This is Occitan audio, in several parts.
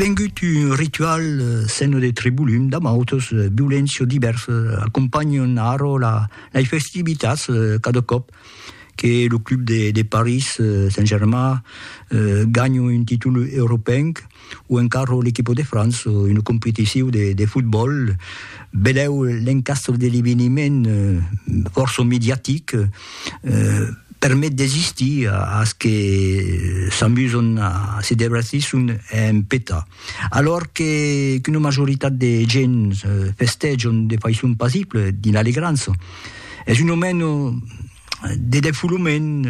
Vengut un ritual seno de tribulum damb autos violents o divers, acompanhon arro lai festivitats cada còp que lo club de París Saint-Germain ganha un títol europenc o encara l'equipa de França en una competicion de fotbòl. Benlèu l'encastre de l'eveniment fòrça mediatic, permet d'existir as que s'amuson a se debratisson en peta. Alòr que qu'una majoritat de gents festèjon de faiçon pasible dins l'alegrança, es un aument de defolament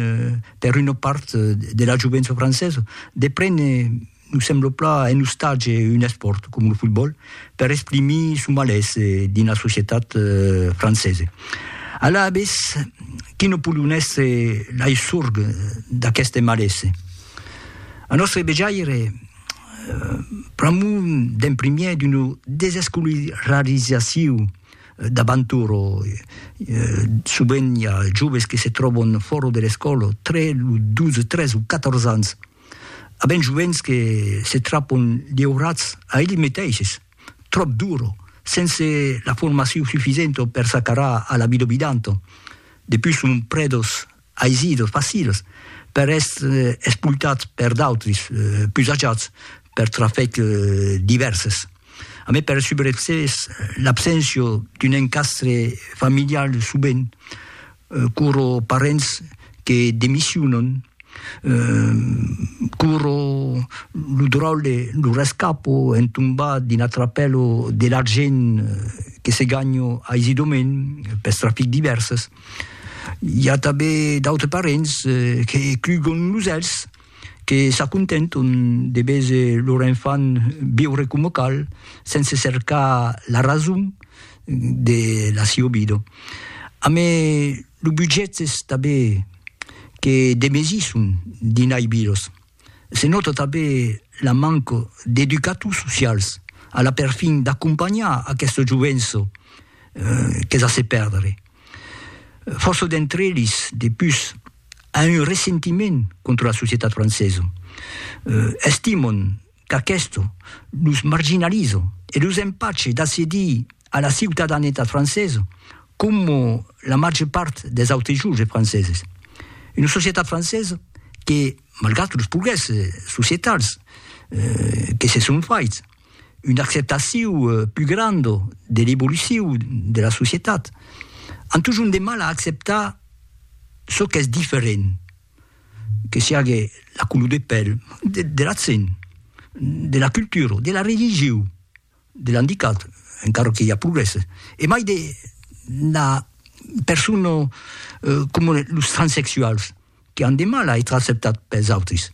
per una part de la jovença francesa de prene Nos sembla pla un ostatge, un espòrt, com lo fotbòl, per exprimir son malés dins la societat francesa. Alavetz, qui no podon èstre lai sorg d'aqueste malés? A nòstre vejaire, pr'amor d'un primièr d'una desescolarizacion d'abantur, sovent i a joves que se tròban fòra de l'escòla tre los 12, 13 o 14 ans, A ben joents que se trapon liurats a elli meteishes, tròp duro, sense la formacion sufisento per s'acarar a la vida obidanto. Depus son predos aisidos, facils, per èstre espultats per d'autres, pus ajats, per trafec divèrses. A mai per subrevisses l'abséncia d'un encastre familial subent, Quoro parents que demissionan, quoro lo dròlle, lo rescapo entombat dins la trapèlo de l'argent que se ganha aisidament pels trafics divèrses. I a tanben d'autres parents que clugan los èlhs que s'acontenton de veser lor enfant viure coma cal, sense cercar la rason de la siua vida. Amé lo budget es tanben que demesisson dinai vidas. Se nòta tanben la manca d'educators socials a la perfin d'acompanhar aquesta jovença qu'es a se perdre. Fòrça d'entre eles, de pus, a un ressentiment contra la societat francesa. Estimon qu'aquesto los marginaliza e los empache d'accedir a la ciutadanetat francesa coma la màger part dels autres joves franceses. Una societat francesa que, malgrat los progrèsses societals que se son faits, una acceptaciu plus granda de l'evoluciu de la societat, an totjorn de mal a acceptar çò qu'es diferent, que siague la color de pèl, de l'accent, de la cultura, de la religiu, de l'andicat, encara que i a progrèsses, e mai de la persona, coma los transsexuals. que an de mal a ètre acceptats pels autris.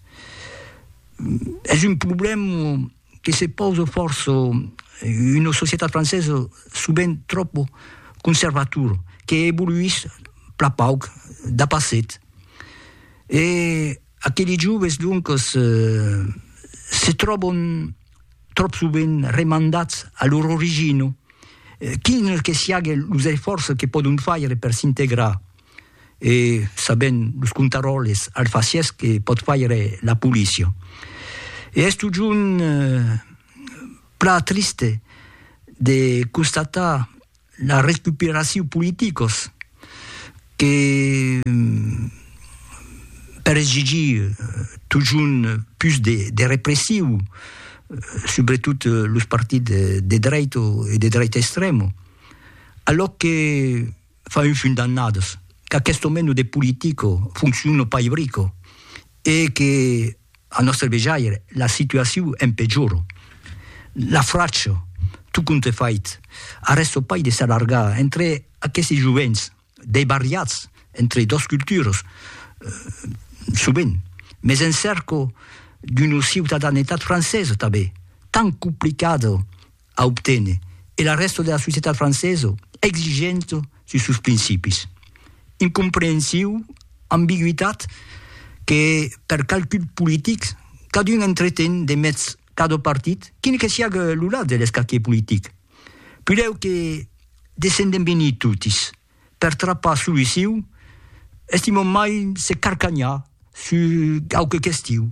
Es un problèm que se pausa fòrça una societat francesa sovent tròp conservatora, que evoluís plan pauc dapasset. E aqueli joves, doncas, se tròban tròp sovent remandats a lor origina, quin que siague los esfòrces que pòdon faire per s'integrar. e sabent los contaròles alfacièrs que pòt faire la polícia. E es totjorn plan triste de constatar la recuperacion politicos que per exigir totjorn pus de repressiu subretot los partits de dreita e de dreita extrèma, alòc que fa un fum d'annadas qu'aquesto meno de politico fonciona pas ibrico e que, a nòstre vejaire, la situaciu en pejora. La fracha, tot compte fait, arrèsta pas de s'allargar entre aquesti jovents debariats entre dos culturas, sovent, mès en cèrca d'una ciutadanetat francesa tanben, tan complicada a obténer e la rèsta de la societat francesa exigenta sus sos principis. Incomprehensiu, ambigüitat que per calculs politics cadun entreten de mètz cada partit, quin que siague lo lat de l'escaquier politic. Pudèu que descendem venir totis per trapar soluciu, estimam mai se carcanhar sus quauque question.